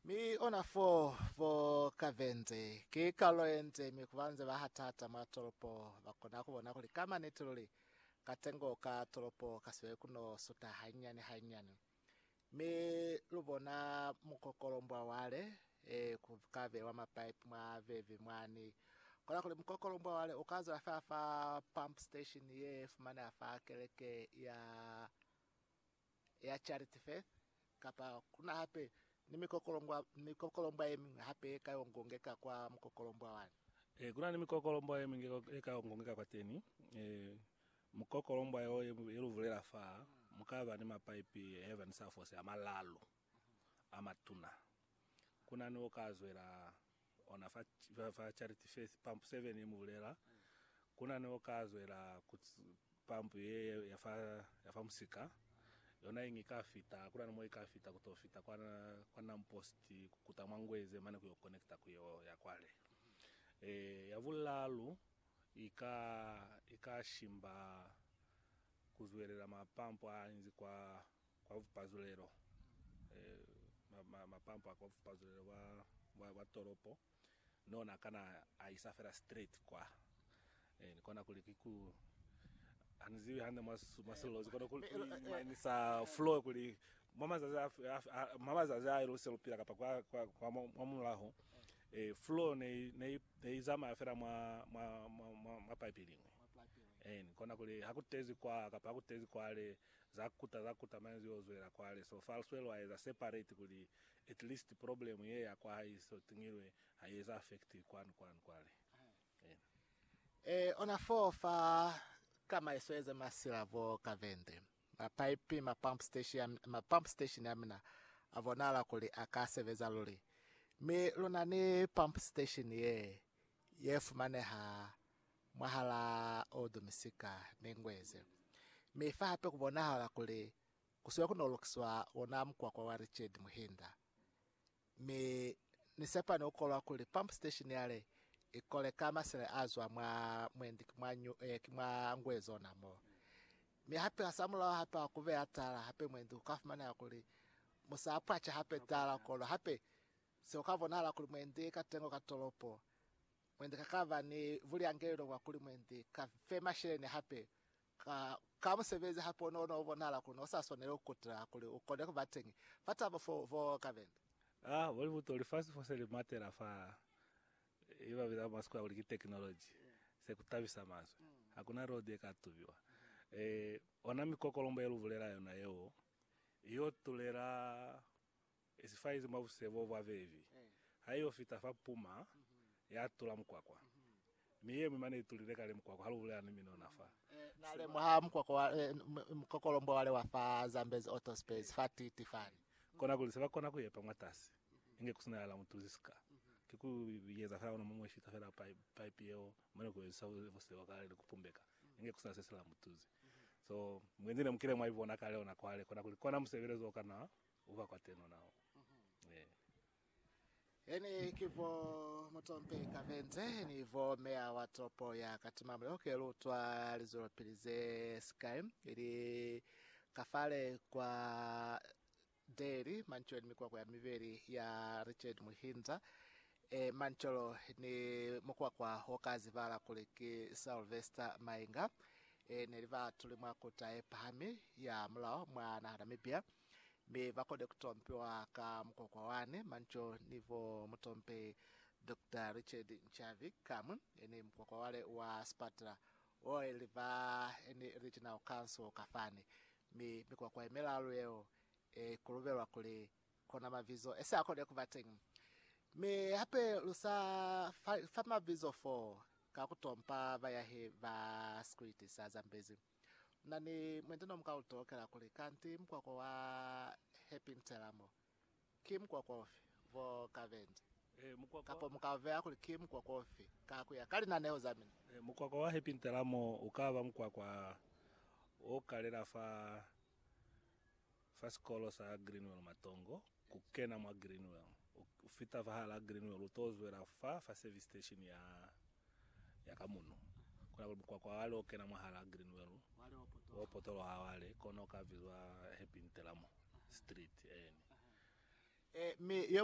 Mi ona fo, fo Caverns, ki kalulo yenze, mi kuba nze ba hata-hata mwa tolopo, ba kona kubona kuli ka maniti luli, katengo ka tolopo kasibele kuno suta hanyinyani-hanyinyani. Mi lubona mukokolombwa wale, ee, ku ka bewa mapipe mwa vevi mwani, kona kuli mukokolombwa wale uka zwela fela fa pump station ye fumaneha fa keleke ya. ya Charity Faith, kapa ku na hape ni mikokolombwa, mikokolombwa ye miñwi hape ye ka y'o ngongeka kwa mukokolombwa wani. Ee, ku na ni mikokolombwa ye miñwi ye ka y'o ngongeka kwateni. Ee, mukokolombwa y'o ye lu bulela fa, mu ka ba ni mapaipi a yeva ni sa fose a malalu. a matuna. Ku na ni o ka zwela ona fa, fa Charity Faith, pampu 7 i mu bulela. Ku na ni o ka zwela ku pampu ye ya fa, ya fa musika. Yona inge i ka fita, ku na ni mo i ka fita, ku to fita kwa, kwa Nam Post, ku kuta mwa Ngweze mane ku yo connecta ku yo ya kwale. E, ya bulaalu i ka, i ka shimba ku zwelela mapampu a inzi kwa, Kwa bupazulelo, mapampo a kwa bupazulelo bwa tolopo ni ona akana a isa fela straight kwa. Ni kona kuli ki ku, hani zibi hande mwa silolozi kono ku imanisa flow kuli mwa mazazi a lu se lu pila kapa kwa mwa mulaho, flow ne i zamaya fela mwa pipe liñwi. Ni kona kuli ha ku tezi kwa kapa ha ku tezi kwale, Zakuta zakuta manzi yo zwela kwale so far swelo a eza separate kuli at least problem ye ya kwa hae so tingilwe ha ye eza affect kwanu kwanu kwale Amen. E ona foo fa tsamaiso eze masila bo kavende, ma pipe, ma pump station, ma pump station a mina a bonahala kuli a ka sebeza luli. Mi luna ni pump station ye, ye fumaneha mwahalaa Odo misika ne ingu yeze. Mi fa hape ku bonahala kuli ku sile ku nolokiswa ona mukwakwa wa Richard Muhinda. Mi Ni sepani ku kolwa kuli pump station yale i kole ka masele a zwa mwa mwendi ki mwa nyu, eh, ki mwa ngu ye zona mo. Mi hape hasamulaho hape ha ku beya tala hape mwendi ku ka fumaneha kuli mu sa pwaca hape tala kono hape se ku ka bonahala kuli mwendi katengo ka tolopo Mwendi ka kaba ni buliangelelo bwa kuli mwendi ka fe masheleñi hape ka ka musebezi hape o no bonahala kuli no sa swaneli ku kutila kuli u kone ku ba teñi fa tabo fo fo ka bende. A bo ni buto, lifasi fo se li matela fa ye ba biza mwa sikweha kuli ki tekinoloji, se ku tabisa mazwi. Ha ku na road ye ka tubiwa. Ee, ona mikokolombo ye lu bulela yona yeo, i yo tulela I si faizi mwa busebo bwa bebi, ha i yo fita fa puma, ya tula mukwakwa, mi ye mwi mane i tulile kale mukwakwa ha lu bulela ni minona fa. Na lemuha mukwakwa wa, mukokolombwe wale wa fa Zambezi Auto Space fa Titi fani. Kona kuli se ba kona ku yepa mwatasi, inge ku si na ya la mu tuzi ka. Ki ku ieza fela ona muñwi fita fela pipe yeo, mane ku ezisa busebo kale ni ku pumbeka, inge ku si na se si la mu tuzi. So, mwendi ne mu kile mwa i bona kale ona kwale, kona kuli kona musebelezo o kana Uba kwa teno nao. Ee. Eni ki bo mutompe ka venze ni bo meya wa toropo ya Katima mulelo ke lutwa lizwelopili ze sikai ili kafale kwa Deli Mancholo ni mikwakwa ya mibeli ya Richard Muhinza e Mancholo ni mukwakwa wo ka zibala kuli ki Sylvester Mainga e ne li baatuli mwa kuta ye pahami ya mulao mwa naha Namibia. mi ba kone ku tompiwa ka mukokwa wane, Manco ni bo mutompi Doctor Richard Nchavi kamwe ni mukokwa wale wa sipatela o ili ba ni Regional Council ka fani, mi mikokwa ye milalu yeo i kulubelwa kuli kona mabizo e sa kone ku ba teñi. Mi hape lu sa fa mabizo foo ka ku tompa bayahi ba sikwiti sa Zambezi. Na ni mwindi no muka utokela kuli kanti mukwakwa wa Happy Ntelamo ki mukwakwa ufi vo ka bendi, kapo muka vea kuli ki mukwakwa ufi ka kuya ka linaneo za mina? Mukwakwa wa Happy Ntelamo ukaba mukwakwa o kalela fa. Fa sikolo sa Greenwell Matongo, ku kena mwa Greenwell, u, u fita fa hala Greenwell, u t'o zwela fa, fa service station ya, ya ka muno. Kona kuli mukwakwa wale o kena mwahal'a Greenwell, wo potoloha wale, kono u ka bizwa Happy Ntelamo Street, eeni. E, mi yo